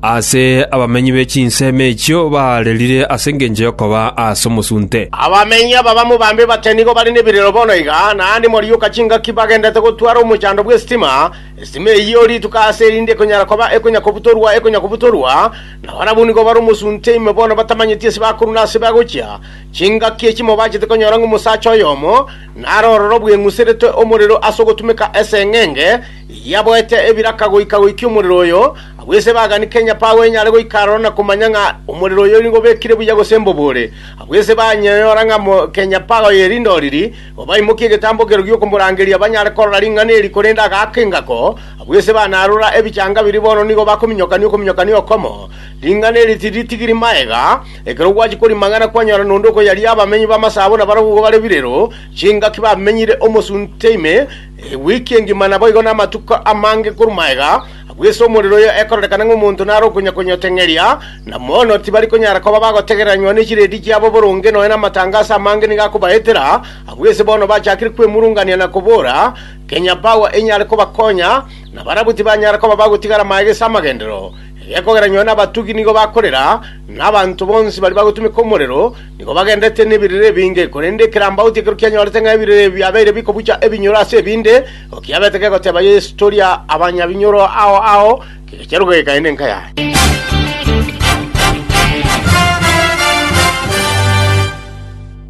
Aase abamenyi be chinsemo echio baarerire ase engencho y'okoba aase omosunte. Abamenyi aba bamobambe bate nigo bare nebirero bono iga, naende mwarioka chingaki bagendete gotwara omochando bw'estima, estima eyio rituko aase erinde ekonyara koba ekonyakobutorwa ekonyakobutorwa, na barabwo nigo bare omosunte ime bono batamanyeti ase bakorwa na ase bagochia, chingaki echi mobachete konyora ng'omosacha oyomo nare ororo bweng'useretwe omorero ase ogotumeka eseng'enge, Yaboete ebiraka goika goikia omorero oyo, abwo ase baganike enyapaao enyare goika aroro na komanya ng'a omorero oyo nigo obekire buya gose mbobore. Abwo ase banyora ng'a kenyapaao eye rinde oriri, igo baimokia egetambo ekero gi'okomorangeria banyare korora ring'ana eri, korende agaaka engako. Abwo ase banarora ebichanga biria bono nigo bakominyokania okominyokania okomo. Ring'ana eri tiritigiri magega, ekero gwachia korimang'ana kwanyora nonde okoyaria abamenyi b'amasaabo nabarabwo bare birero, chingaki bamenyire omosunte ime, Ewiki engima naboigo namatuko amange korwa maega, agwo ase omorero oyo ekororekana ng'a omonto nare okonyakonya oteng'eria, na bono tibari konyara koba bagotegereranywa ne chiredi chiabo boronge nonya namatangaso amange nigo akobaetera, agwo ase bono bachakire kwemurungania na kobora, Kenya Power enyare kobakonya, na barabwo tibanyara koba bagotigara maega ase amagenderero, egekogera nonya nabatugi nigo bakorera, na abanto bonsi baria bagotumeka omorero, Nigo bagenderete nebirere ebinge, korende ekerambaoti ekero kianyorete ng'a ebirere ebi biabeire bikobucha ebinyoro ase ebinde, igo kiabete gegoteba Yeso, Toria abanyabinyoro ao ao, kegecha ruga gekaende enka yaye.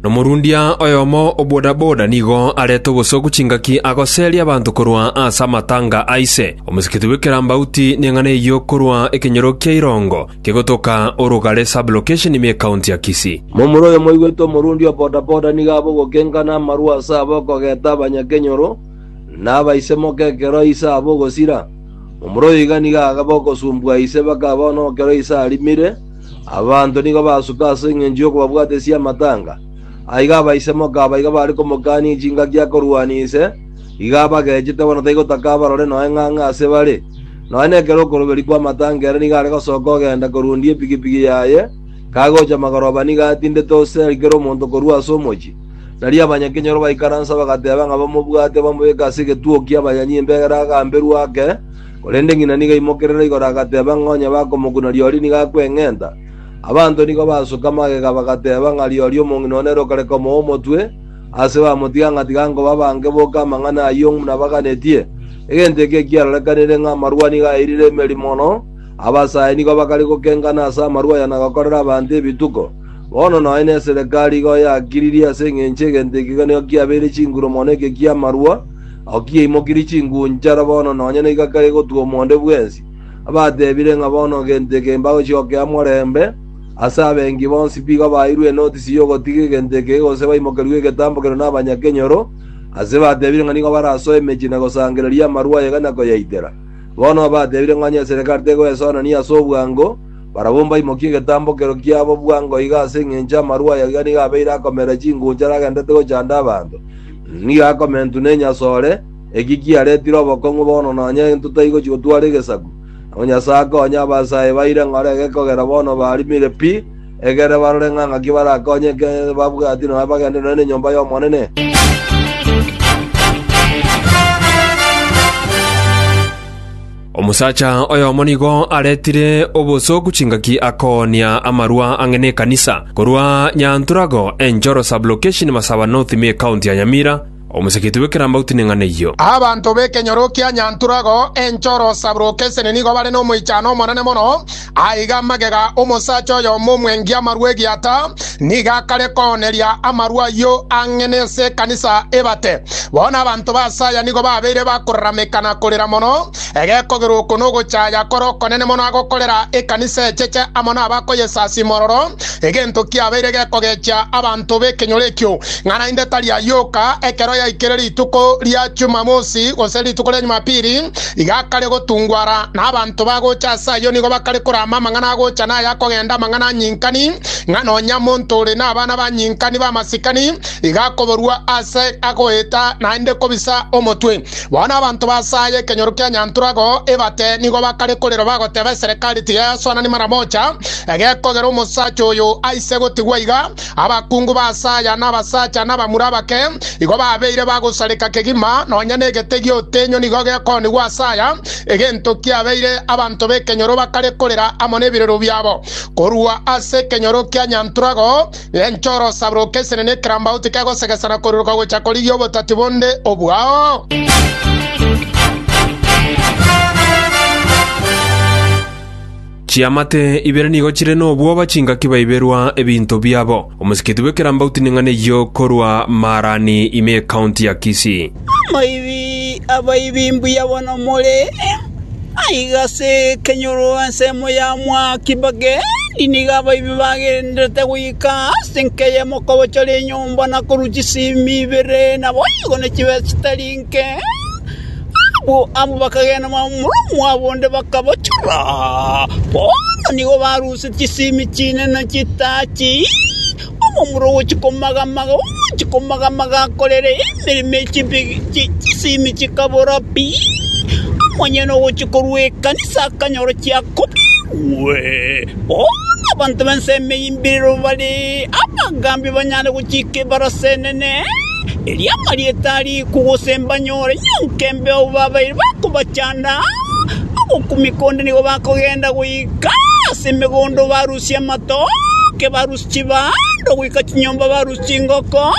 Nomorundia oyomo o bodaboda nigo arete obosoku chingaki agoseria abanto korwa ase amatanga a ise. Omosikiti bw'ekerambauti neng'ana eyio korwa ekenyoro kia irongo Kegotoka orogare sub-location ime County ya Kisii. Momura oyo moigwete omorundi o bodaboda nigo abe ogokenga na amarwa ase aba okogeta abanyakenyoro na abaisemoka ekero ise abe ogosira. Momura oyo iga nigo agabe okosumbwa ise mpaka bono ekero ise arimire, abanto nigo basuka ase engencho y'okobabwatesia amatanga. Aiga abaisemoka aba iga bare komokania chingaki akorwania ise, Iga abagechete bono taigotaka abarore noe ng'a ng'a ase bare, nonya nekero okoruberia kw'amatango ere nigo are gosoka ogenda korundia epigipigi yaye, kagocha magoroba nigo atindete ose ari kera omonto korua ase omochie. Nario abanyakenyoro baikaransa bagateba ng'a bamobwate bamobeke ase egetuo ki'abanyanyi imbegera agamberwe ake, korende ng'ina nigo aimokerere igoro agateba ng'a onye bakomokuna rirorio nigo akweng'enta. Abanto nigo basoka magega bagateba ng'a rirorio omong'ina one rokare komoa omotwe, Ase bamotiga ng'a tiga nkoba bange boka amang'ana ayio buna baganetie, egento eke ekiarorekanire ng'a amarua nigo airire emeri mono, abasae nigo bakare gokengana ase amarua aya na gokorera abanto ebituko. Bono nonye neserekari igo yakiririe ase engencho egento eke iga nigo kiabeire chinguru mono eke ki'amarua, ao kiaimokirie chingunchara bono nonye naiga kare gotugwa omonde bwensi. Abatebire ng'a bono egento eke mbagochia gokea morembe, Ase abengi bonsi pigo abaeirwe enotisi y'ogotiga egento eke gose baimokerwe egetambo keria nabanyakenyoro, ase batebire ng'a nigo barasoe emechie na gosangereria amarwa aye na koyaitera. Bono abatebire ng'a onye eserekari tegoesonania ase obwango, barabwo mbaimokie egetambo kero kiabo bwango iga ase engencho amarwa aya iga nigo abeire akomeera chinguncha aragenderete gochanda abanto, nigo akomentwa nenyasore, eki kiaretire obokong'u bono nonye intotaigochi gotwara egesaku. Nabo Nyasae akonye abasae ba ire ng'ora ege kogera bono barimire pi, egere barore ng'a ng'aki barakonyeke ekero babwati nonya bagende nonya nenyomba y'Omonene. Omosacha oyomo nigo aretire obosooku chingaki akoonia amarwa ang'e nekanisa, korwa Nyanturagor enchoro sub-location Masaba North me county ya Nyamira, Omosaketie bw'ekerambauti neng'ana eyio. Abanto b'ekenyoro kia Nyanturagao enchoro saburoka esene nigo bare nomoichano omonene mono. Aiga magega omosacha oyomo omwengi amarwa egiata, nigo akare kooneria amarwa ayio ang'e nense ekanisa ebate. Bono abanto b'aase aya nigo babeire bakorarameka na korera mono, egekogera oko nogochaya kore okonene mono agokorera ekanisa echeche amo nabakoyesasia mororo, Egento kiabeire gekogechia abanto b'ekenyoro ekio, ng'a naende tari ayoka ekero yaikire rituko ria Chumamosi gose rituko ria Nyumapiri, iga akare gotungwara, na abanto bagocha ase ayio nigo bakare korama amang'ana agocha na aya akogenda, amang'ana anyinkani, ng'a nonya monto ore nabana banyinkani b'amasikani iga akoborua ase agoeta naende kobisa omotwe. Bono abanto basaya ekenyoro kia Nyantura agoo ebate nigo bakare korera bagoteba eserekari tiga yasoanani mara mocha, Egekogera omosacha oyo aise gotigwa iga, abakungu b'aase aya na abasacha na abamura abake igo babeire bagosareka kegima, nonya n'egete gi'otenyo nigo gekoonigwa ase aya, egento kiabeire abanto b'ekenyoro bakare korera amo n'ebirero biabo. Korwa ase ekenyoro kia Nyantrago genche orosabroke esenene ekerambaut kegosegesana koriroka gocha korigia obotati bonde obwao. Chiamate ibere nigo chire nobwoba chingaki baiberwa ebinto biabo. Omosikiti bw'ekerambau tineng'ana eyio korwa Maarani ime ekaunti ya Kisii. Amaibi, abaibi mbuya bono more! Aiga ase ekenyoro ensemo ya mwaki bagendi, nigo abaibi bagendererete goika ase enka eyemo kobochora enyomba na korua chisimi ibere, naboigo ne chibesa chitari nke. Abwo amo bakagenda momurunwa mwabo onde bakabochora. Bono nigo barusetie chisimi chinene chitachi, omomura ogochia komagamaga, ogochia komagamaga akorere emeremo ye chimbe chisimi chikabora pi. Omonyene ogochia korwa ekanisa akanyora chiakobeirwe. Bono abanto b'ensemo eyio mbirero bare abagambi banyare gochika ebarasa enene. erio amarieta ariko gose mbanyore nyonka embeo babaire bakobachanda ogokumeka onde nigo bakogenda goika ase emegondo barusie amatoke barusie chibando goika chinyomba barusie chingoko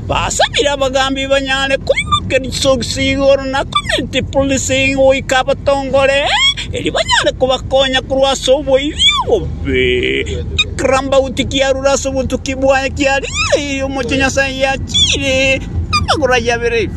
basabire abagambi banyare koimokeria chisokisi igoro na community policing goika abatongore erio banyare kobakonya korwa ase oboibi obo Ekirambauti kiarure ase obotuki bwaye kiarigereirie omochie Nyasae yachiire amagoro aye abere.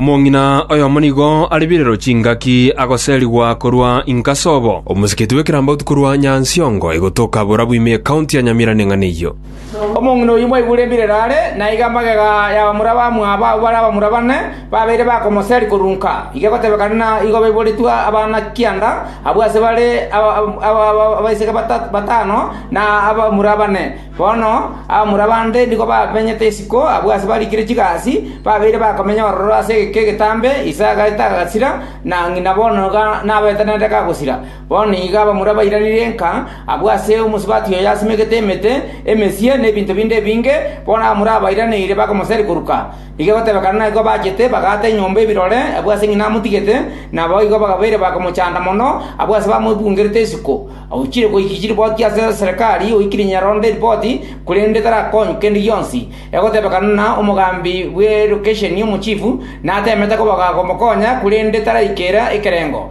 Omong'ina oyomo nigo are birero chingaki agoserigwa korwa Inkasobo, omosiketi bw'Ekerambauti korwa Nyansiongo, egotoka borabu ime ekaunti ya Nyamira neng'ana eyio. Omong'ina oyio mwaigure embirero are, na iga magega y'abamura bamwabo abwo bare abamura bane, babeire bakomoseria korunka. Iga egotebekana na igo baiboretwe abana kianda abwo ase bare abaiseke batano na abamura bane. Bono abamura bande nigo bamenyete isiko abwo ase barikire chigasi, babeire bakomenya ororo ase egeka egetambe, Isaka etagasira, na ng'ina bono iga nabetenenete kagosira. Bono nigo abamura bairanire nka abwo ase omosubati oyo asimegete emete emesie na ebinto binde ebinge, bono abamura abairaneire bakomoseri koruka. Nigo egotebekana naye kobachete bagaata enyomba ebirore abwo ase ng'ina amotigete, na naboigo bagabeire bakomochanda mono abwo ase bamoibugerete isiko. Ochire goika chiripoti ase Serikari oikire nyarondo eripoti, korende tarakonywa kende gionsi. Egotebekana na omogambi bwe lokesheni omochifu natemete komokonya korende taraikera ekerengo.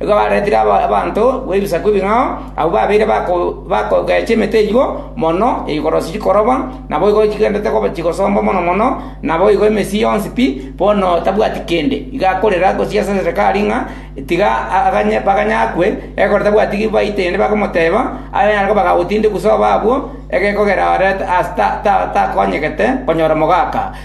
Igo baretire abanto b'ebisaku ebing'ao, abwo babeire bakogecha emete eyio mono igoro chikoroba, naboigo chigendete koba chigosomba mono mono, naboigo emesii yonsi pi, bono tabwati kende. Igo akorera gosiasa Sisakari ng'a tiga aganye baganye akwe, ekero tabwati ki baite ende bakomoteba, aye nare koba gagotindekwa sobo abwo, egekogera ore takonyegete konyora omogaka.